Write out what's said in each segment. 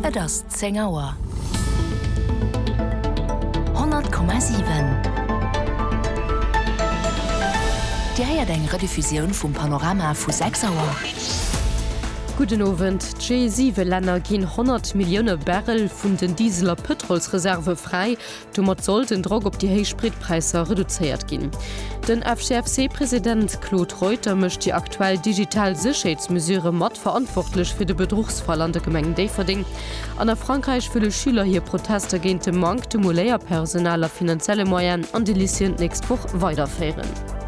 Et ass zéng Auer. 100,7 Dir héiert eng Rediffusioun vum Panorama vu 6 Auer. Gudden Owend. D'G7-Länner ginn 100 Millioune Barrel vun den Diesel a Pëtrolsreserve fräi, Domat soll den Drock op déi héich Spritpräisser reduzéiert ginn. Den FGFC-President Claude Reuter mécht déi aktuell digital Sécherheetsmesurë mat verantwortlech fir de Bedruchsfall an der Gemeng Déifferdeng. An a Frankräich wëlle Schüler hir Protester géint de Manktem u Léierpersonal a finanzielle Moyene an de Lycéeën d'nächst Woch weiderféieren.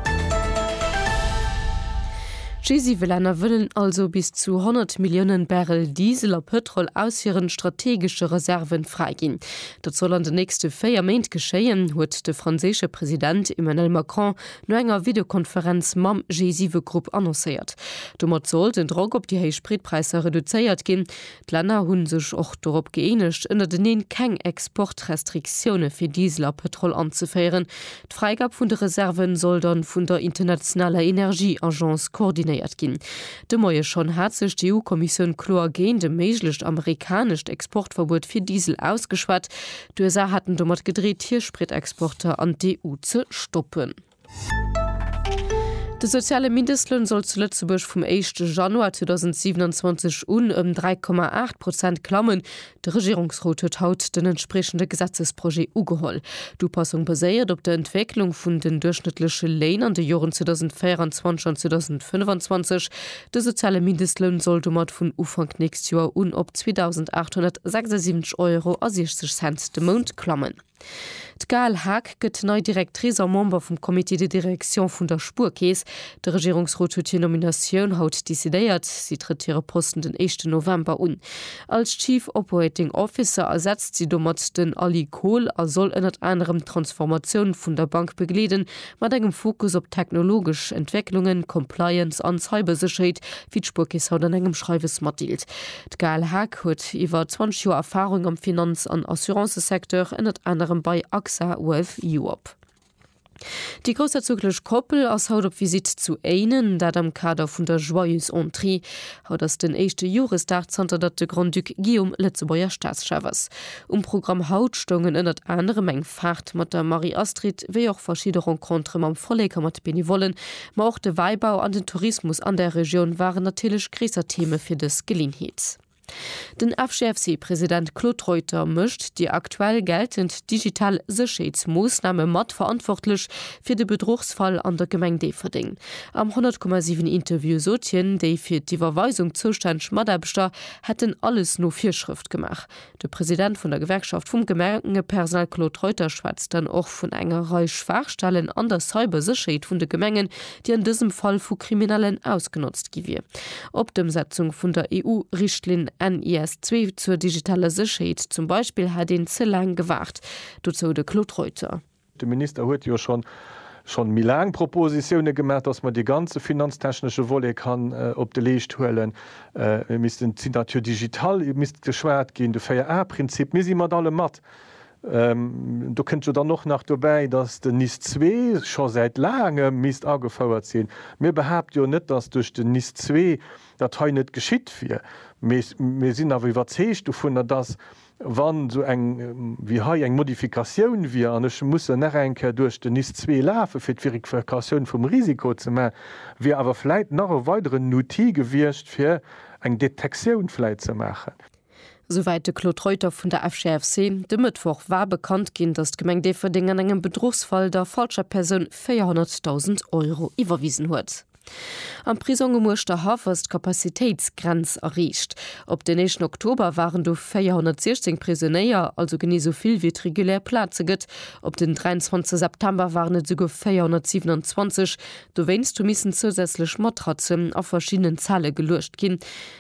G7-Länner wëllen also bis zu 100 Milliounen Barrel Diesel a Pëtrol aus hiren strategesche Reserven fräiginn. Dat soll an de nächste véier Méint geschéien, huet de franséische President Emmanuel Macron no enger Videokonferenz mam G7-Grupp annoncéiert. Domat soll den Drock op déi héich Spritpräisser reduzéiert ginn. D'Länner hu sech och dorop gëeenegt, ënnerteneen keng Exportrestriktioune fir Diesel a Pëtrol anzeféieren, D'Fräigab vun de Reserven soll dann vun der internationaler Energieagence koordinéiert ginn. De Moie schonn hat sech d'EU-Kommissioun kloer géint e méiglecht amerikanescht Exportverbuet fir Diesel ausgeschwat. D'USA haten domat gedreet hir Spritexporter an d'EU ze stoppen. De soziale Mindestloun soll zu Lëtzebuerg vum éischte Januar 2027 un ëm 3,8 Prozent klammen. De Regierungsrot huet haut den entspriechende Gesetzesprojet ugeholl. D'Upassung baséiert op der Entwécklung vun den duerchschnëttleche Léin an de Joren 2024 an 2025. De soziale Mindestloun soll domat vun Ufank nächst Joer un op 2.876 Euro a 60 Cent de Mount klammen. D'Gaëlle Haag gëtt nei Directrice a Member vum Comité de direction vun der Spuerkeess. De Regierungsrot huet hir Nominatioun haut decidéiert. Si trëtt hire Posten den éischten November un. Als Chief Operating Officer ersetzt si domat den Ali Kohl a soll ënnert anerem d'Transformatioun vun der Bank begleeden, mat engem Fokus op technologesch Entwécklungen, Compliance an Cybersécherheet, wéi d'Spuerkeess haut an engem Schreiwes matdeelt. D'Gaëlle Haag huet iwwer 20 Joer Erfarung am Finanz an Assurancesecteur, ënnert anerem bei AXA Wealth Europe. Déi groussherzoglech Koppel ass haut op Visitt zu Éinen, dat am Kader vun der Joyeuse Entrée. Haut ass den éischte Joresdag, zanter datt de Grand-Duc Guillaume Lëtzebuerger Staatschef ass. Um Programm haut stoungen ënnert anerem eng Faart mat der Marie-Astrid, wéi och verschidde Rencontere mam Vollek a mat Benevollen, Ma och de Wäibau an den Tourismus an der Regioun waren natierlech gréisser Theme fir dës Geleeënheet. Den FGFC-President Claude Reuter mécht déi aktuell geltend digital Sécherheetsmoossname mat verantwortlech fir de Bedruchsfall an der Gemeng Déifferdeng. Am 100,7 Interview sot hien, déi fir d'Iwwerweisung zoustänneg Mataarbechter hätten alles no Virschrëft gemaach. De President vun der Gewerkschaft vum Gemengepersonal Claude Reuter schwätzt dann och vun enger Rei Schwaachstellen an der Cybersécherheet vun de Gemengen, déi an dësem Fall vu Kriminellen ausgenotzt gi wier. Op d'Ëmsetzung vun der EU-Richtlinn NIS2 zur digitaler Sécherheet zum Beispill hätt een ze laang gewaart. Dozou de Claude Reuter. De Minister huet jo schon schon méi laang Propositione gemaach, dass mer dee ganze finanztechnesche Volet kann op de Leescht huelen. Mir missten d'Signature digitale misst geschwat ginn, de 4A-Prinzip. Mir si mat allem mat. Do kënnt jo dann och nach dobäi, dass den NIS zwee scho säit laangem misst agefouert sinn. Mir behaapte jo net, dass duerch den NIS zwee dat hei net geschitt wier. Mee mir sinn awer iwwerzeegt dovunner, dass Wa sou eng wéi hei eng Modifikatioun wier, an ech musse nach eng Kéier duerch den NIS zwee lafe fir d'Verifikatioun vum Risiko ze maachen, wier awer vläit nach e weideren Outil gewiescht fir eng Detektioun vläit ze maachen. Souwäit de Claude Reuter vun der FGFC. De Mëttwoch war bekannt ginn, datt d'Gemeng Déifferdeng an engem Bedruchsfall der falscher Persoun 400.000 Euro iwwerwisen huet. Am Prisong um Uerschterhaff ass d'Capacitéitsgrenz erreecht. Op den éischten Oktober waren do 416 Prisonéier, also genee esou vill wéi et regulär Plaze gëtt. Op den 23 September waren et esouguer 427. Dowéinst hu missen zousätzlech Matratzen a verschiddenen Zelle geluecht ginn.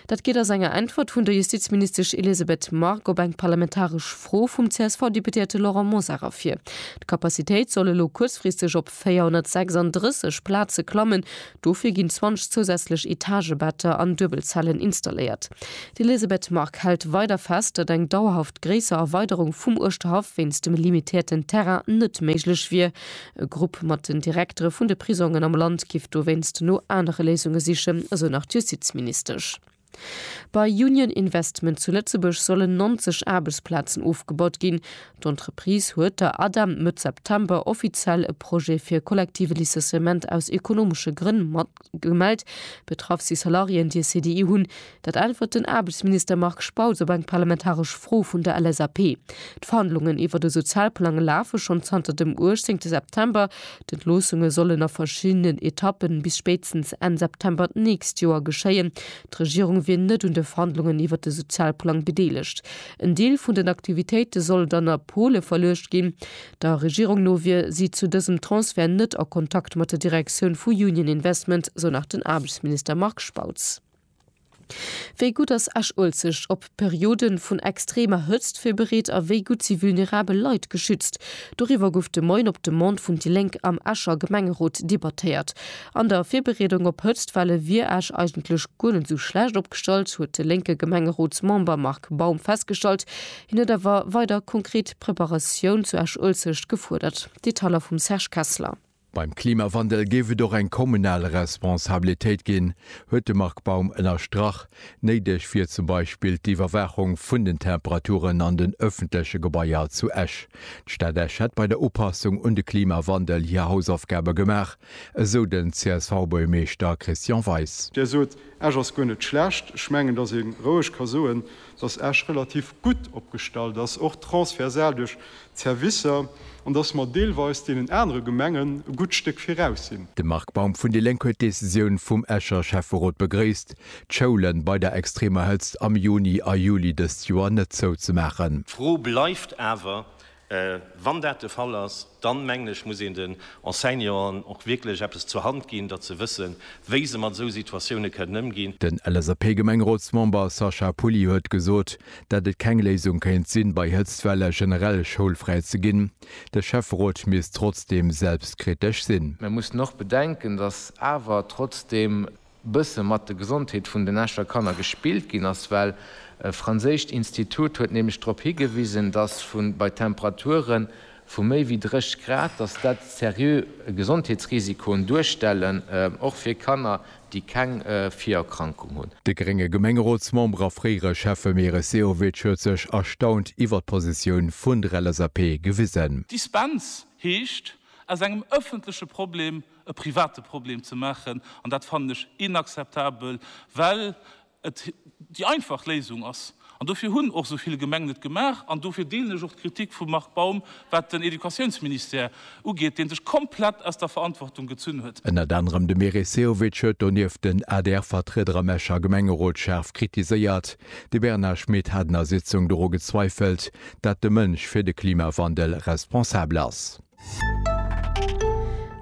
Dat geet aus enger Äntwert vun der Justizministesch Elisabeth Margue op eng parlamentaresch Fro vum CSV-Deputéierte Laurent Mosar ervir. D'Capacitéit soll elo kuerzfristeg op 436 Plaze klammen, dofir ginn 20 zousätzlech Etagebetter an Duebelzellen installéiert. D'Elisabeth Margue hält weider fest, datt eng dauerhaft gréisser Erweiderung vum Uerschterhaff wéinst dem limitéierten Terrain net méiglech wier. E Grupp mat den Direktere vun de Prisongen am Land géif dowéinst no anere Léisunge sichen, esou nach d'Justizministesch. Bei Union Investment zu Lëtzebuerg sollen 90 Aarbechtsplazen ofgebaut ginn. D'Entreprise huet der ADEM Mëtt September offiziell e Projet fir e kollektive Licenciement aus ekonomesche Grënn gemellt. Betraff si Salariéen, déi e CDI hunn. Dat äntwert den Aarbechtsminister Marc Spautz op eng parlamentaresch Fro vun der LSAP. D'Verhandlungen iwwert e Sozialplang lafe schonn zanter dem 18 September. D'Entloossunge sollen a verschiddenen Etappen bis spéitstens Enn September d'nächst Joer geschéien. D'Regierung wier net un de Verhandlungen iwwert de Sozialplang bedeelegt. En Deel vun den Aktivitéite soll dann a Pole verluecht ginn. Der Regierung no wier si zu dësem Transfert net a Kontakt mat der Direktioun vu Union Investment, sou nach den Aarbechtsminister Marc Spautz. Wéi gutt ass Esch-Uelzecht op Periode vun extremer Hëtzt virbereet a wéi gutt si vulnerabel Leit geschützt? Doriwwer gouf de Moien op Demande vun déi Lénk am Escher Gemengerot debattéiert. An der Virbereedung op Hëtztwelle wier Esch eigentlech guer net esou schlecht opgestallt, huet de lénke Gemengerotsmember Marc Baum festgestallt. Hien huet awer weider konkret Preparatioun zu Esch-Uelzecht gefuerdert. Detailer vum Serge Kessler. Beim Klimawandel géif et och eng kommunal Responsabilitéit ginn, huet de Marc Baum ënnerstrach. Néideg wier zum Beispill d'Iwwerwaachung vun den Temperaturen an den ëffentleche Gebaier zu Esch. D'Stad Esch hätt bei der Upassung un de Klimawandel hir Hausaufgabe gemaach, esou den CSV-Buergermeeschter Christian Weis. Där sot, Esch ass guer net schlecht. Ech mengen, datt ee roueg ka soen, datt Esch relativ gutt opgestallt ass, och transversal duerch Servicer an dass mer deelweis deenen anere Gemengen e gutt Stéck viraus sinn. De Marc Baum vun déi Lénk huet d'Decisioun vum Escher Schäfferot begréisst, d'Schoule bei der extremer Hëtzt am Juni a Juli dëst Joer net zouzemaachen. D'Fro bleift awer, Wann dat de Fall ass, dann, mengen ech, muss een den Enseignanten och wierklech eppes zur Hand ginn, datt se wëssen, wéi se mat esou Situatioune kënnen ëmginn. Den LSAP-Gemengerotsmember Sacha Pouly huet gesot, datt et keng Léisung kéint sinn, bei Hëtztwelle generell schoulfräi ze ginn. De Schäfferot misst trotzdeem selbstkritesch sinn. Mir mussen och bedenken, datt awer trotzdeem bësse mat de Gesondheet vun den Escher Kanner gespillt ginn ass, well e franséischt Institut huet nämlech drop higewisen, datt vu bei Temperaturen vu méi wéi 30 Grad, datt dat seriö Gesondheetsrisikoen duerstellen, och fir Kanner, déi keng Virerkrankung hunn. De grénge Gemengerotsmember a fréiere Schäffe Meris Sehovic huet sech erstaunt iwwert d'Positioun vun der LSAP gewisen. Dispens heescht, aus engem ëffentleche Problem e private Problem ze maachen, an dat fannen ech inakzeptabel, well et déi einfach Léisung ass. An dofir hunn och esou vill Gemengen et gemaach. An dofir deelen ech och d'Kritik vum Marc Baum, wat den Educatiounsministère ugeet, dee sech komplett aus der Verantwortung gezunn huet. Ënnert anerem de Meris Sehovic huet donieft den ADR-Vertrieder am Escher Gemengerot schaarf kritiséiert. De Bernard Schmit hat en der Sitzung doru gezweifelt, dat de Mënsch fir de Klimawandel responsabel ass.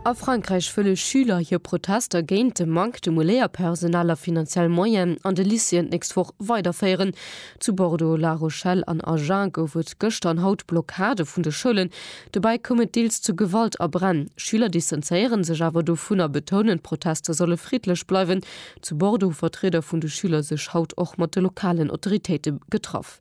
A Frankräich wëlle Schüler hir Protester géint de Manque de Moléierpersonal a finanziell Moyen an de Lycéeën d'nächst Woch weiderféieren. Zu Bordeaux, La Rochelle an Agen gouf et gëschter an haut Blockade vun de Schoulen. Dobäi koum et deels zu Gewalt a Bränn. Schüler distanzéiere sech awer dovun a betounen, d'Protester solle friddlech bleiwen. Zu Bordeaux hu Vertrieder vun de Schüler sech haut och mat de lokalen Autoritéite getraff.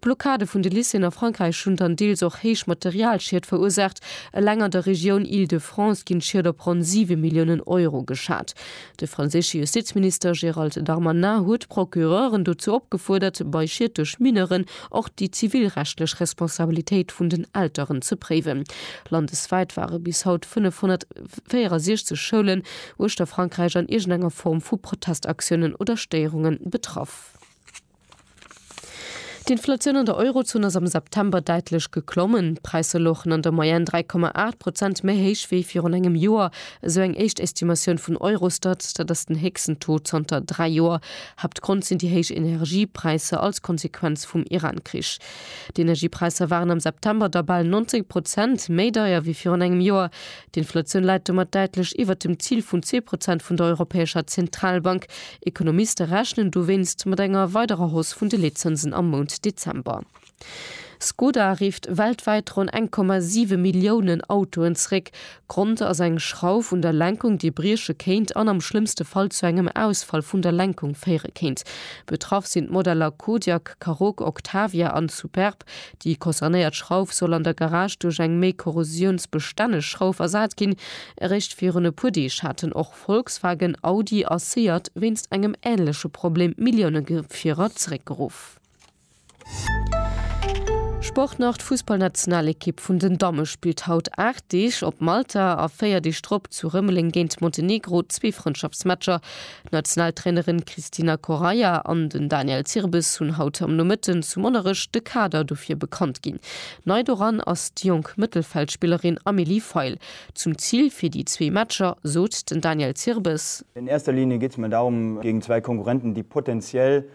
D'Blockade vun de Lycéeën a Frankräich hunn dann deels och héich Materialschied verursaacht. Eleng an der Regioun Île-de-France ginn d'Schied op ronn 7 Milliounen Euro geschat. De franséische Justizminister Gérald Darmanin huet d'Procureuren dozou opgefuerdert, bei Schied duerch Mineuren och déi zivilrechtlech Responsabilitéit vun den Elteren ze préiwen. Landeswäit ware bis haut 564 Schoulen uechter Frankräich an iergendenger Form vu Protestaktiounen oder Stéierunge betraff. D'Inflatioun an der Eurozon ass am September däitlech geklommen. D'Präisser louchen an der Moyenne 3,8 Prozent méi héich wéi virun engem Joer, esou eng éischt Estimatioun vun Eurostat. Dat ass den héchsten Taux zanter dräi Joer. Haaptgrond sinn déi héich Energiepräisser als Konsequenz vum Iran-Krich. D'Energiepräisser waren am September da bal 19 Prozent méi deier wéi virun engem Joer. D'Inflatioun läit domat däitlech iwwert dem Zil vun zwee Prozent vun der Europäescher Zentralbank. Ekonomiste rechnen dowéinst mat enger weiderer Hausse vun de Leetzënsen am Mount Dezember. Skoda rifft weltwäit ronn 1,7 Milliounen Autoen zeréck. Grond ass eng Schrauf un der Lenkung, déi brieche kéint an am schlëmmste Fall zu engem Ausfall vun der Lenkung féiere kéint. Betraff sinn d'Modeller Kodiaq, Karoq, Octavia an Superb. Déi concernéiert Schrauf soll an der Garage duerch eng méi korrosiounsbestänneg Schrauf ersat ginn. Eréischt virun e puer Deeg haten och Volkswagen, Audi a Seat wéinst engem änleche Problem Milliounegefierer zeréckgeruff. Sport nach, D'Fussballnationalekipp vun den Damme spillt haut 8 Deeg op Malta a 4 Deeg drop zu Rëmeleng géint Montenegro, zwee Frëndschaftsmatcher. D'Nationaltrainerin Cristina Correia an den Daniel Zirbes hunn haut am Nomëtten zu Monnerech de Kader dofir bekannt ginn. Nei doran ass déi jonk Mëttelfeldspillerin Amélie Feil. Zum Zil fir déi zwee Matcher sot den Daniel Zirbes. In erster Linie geet et mer darum, géingt zwäi Konkurrenten, déi potenziell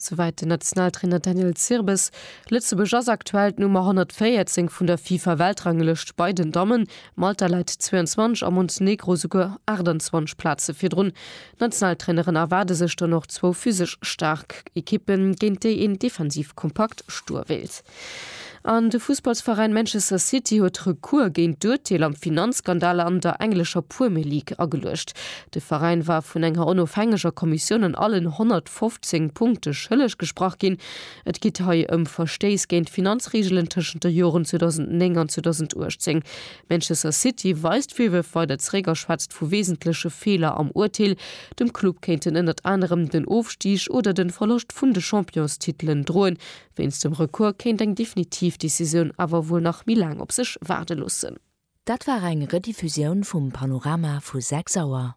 Souwäit den Nationaltrainer Daniel Zirbes. Lëtzebuerg ass aktuell d'Nummer 114 vun der FIFA-Weltranglëscht bei den Dammen. Malta läit 22 a Montenegro souguer 28 Plaze virdrun. D'Nationaltraineren erwaarde sech dann och zwou physesch staark Ekippen, géint déi een defensiv kompakt Stur wéilt. An de Fussballsveräin Manchester City huet Recours géint d'Urteel am Finanzskandal an der englescher Puemr League ageluecht. De Veräin war vun enger onofhängeger Kommissioun an allen 115 Punkte schëlleg gesprach ginn. Et geet hei ëm Verstéiss géint d'Finanzreegelen tëschent de Joren 2009 an 2018. Manchester City weist d'Virwërf weider zeréck a schwätzt vu wesentleche Feeler am Urteel. Dem Club kéinten ënnert anerem den Ofstig oder de Verloscht vun de Championstitelen droen, Wéinst dem Recours kéint eng definitiv Decisioun awer wuel nach méi laang op sech waarde loossen. Dat war eng Rediffusioun vum Panorama vu 6 Auer.